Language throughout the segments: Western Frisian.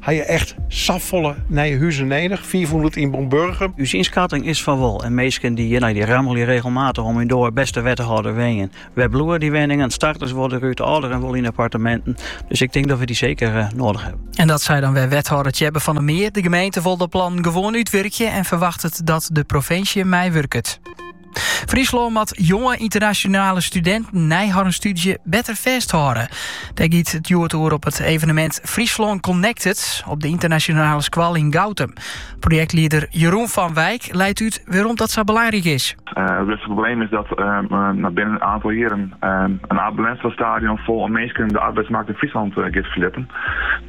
Ha je echt safolle nije huzen nedich? Fiifhûndert yn en om Burgum? Us ynskatting is fan wol en minsken dy't hjirnei dy rammelje regelmatich oan myn doar: bêste wethâlder wenjen, wêr bliuwe dy wenningen? Starters wolle derút, âlderen wolle yn apparteminten. Dus ik tink dat we dy seker noadich hawwe. En dat sei dan wer wethâlder Tjebbe van der Meer. De gemeente wol de plannen gewoan útwurkje en ferwachtet dat de provinsje meiwurket. Fryslân moat jonge internationale studenten nei harren studie better fêsthâlde. Dêr giet it hjoed oer op it evenemint Fryslân Connected op de internationale skoal yn Goutum. Projektlieder Jeroen van Wijk leit út wêrom dat sa belangryk is. Eh, it grutste probleem is dat uh, binnen in oantal jierren uh, in Abe Lenstra stadion fol oan minsken de arbeidsmarkt yn Fryslân giet ferlitten.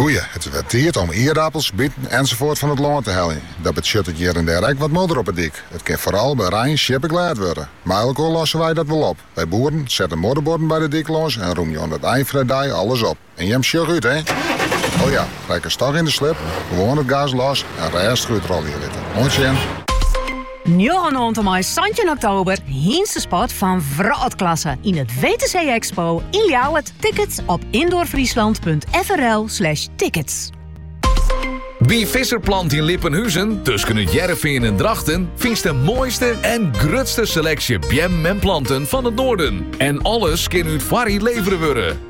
Goeie, it is wer tiid om ierdapels, biten ensafoart fan it lân te heljen. Dat betsjut it hjir en dêr ek wat modder op 'e dyk. It kin foaral by rein sjippeglêd wurde. Mei elkoar losse wy dat wol op. Wy boeren sette modderborden by de dyk lâns en rûmje oan it ein fan 'e dei alles op. En jim, sjoch út, hé! O ja, rekkest toch yn de slip, gewoan it gas los en rêstich útrolje litte. Oant sjen! Njoggen oant en mei santjin oktober Hynstesport fan wrâldklasse yn it WTC Expo yn Ljouwert. Tickets op indoorfriesland.frl slash tickets. By Visser Plant yn Lippenhuzen, tusken It Hearrenfean en Drachten, fynst de moaiste en grutste seleksje beammen en planten fan it noarden. En alles kin út foarried levere wurde.